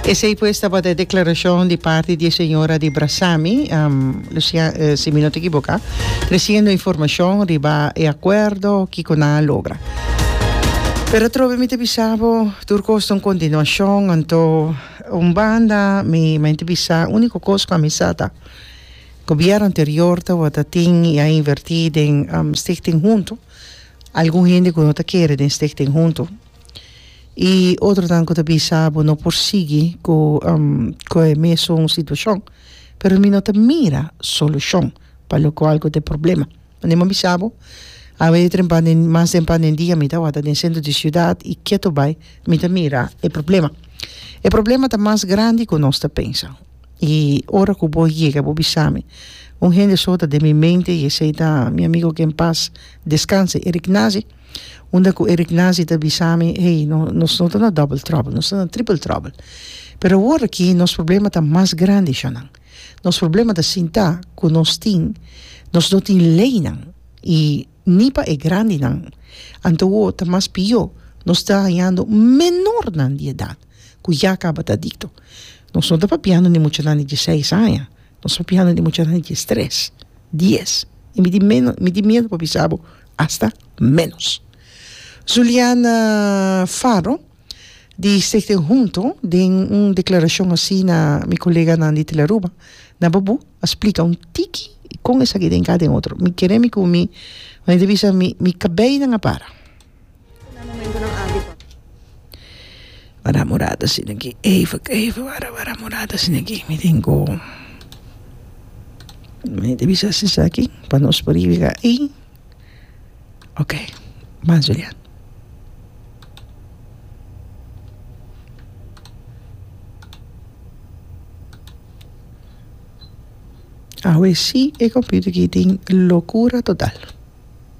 Esey pues tabata e declaracion di parti di e señora di Brasami, Lucia, si mi no ta equivoca, treciendo informacion riba e acuerdo kico nan a logra. Pero atrobe mi ta bisa bo, tur cos ta un continuacion, anto un banda mi menti bisa unico cos cu a misa ta, gobierno anterior tabata tin y a inverti den Stichting Hunto, algun hende cu no ta kere den Stichting Hunto. I otronan ku ta bisa bo no por sigui ku ku e mesun situashon. Pero mi no ta mira solushon pa lo kual ku ta e problema. Mane mi a bisa bo? Awe den pande mas den pande dia mi ta wata den sentro di siudat i ketu bai mi ta mira e problema. E problema ta mas grandi ku nos ta pensa. I ora ku bo yega bo bisa mi un hende so ta den mi mente i esei ta mi amigu ke en pas deskanse Eric Nazi. Unda ku Eric Nazi ta bisami, Hey, nos no ta na double trouble, nos ta na triple trouble. Pero awor aki nos problema ta mas grandi sha nan. Nos problema ta sinta ku nos tin, nos no tin leinan i ni pa e grandinan. Anto awor ta mas pió, nos ta hañando menornan di edat ku ya kaba ta adikto. Nos no ta papiando di muchanan di dieseis aña, nos ta papiando di muchanan di diestres, dies. Mi tin miedu pa bisa bo asta ménos. Zuliana Faro di Stichting Hunto den un deklarashon hasi na mi koleganan di Telearuba na Babú a splika un tiki kon esaki den kada den otro. Mi kere mi ku mi manader bisa mi mi kabeinan a para. Wara morada asina aki even even wara wara morada asina aki mi tin ku mi ta bisa si esaki pa nos por yega ahi ok bye zulian. Awe si e computer aki tin locura total.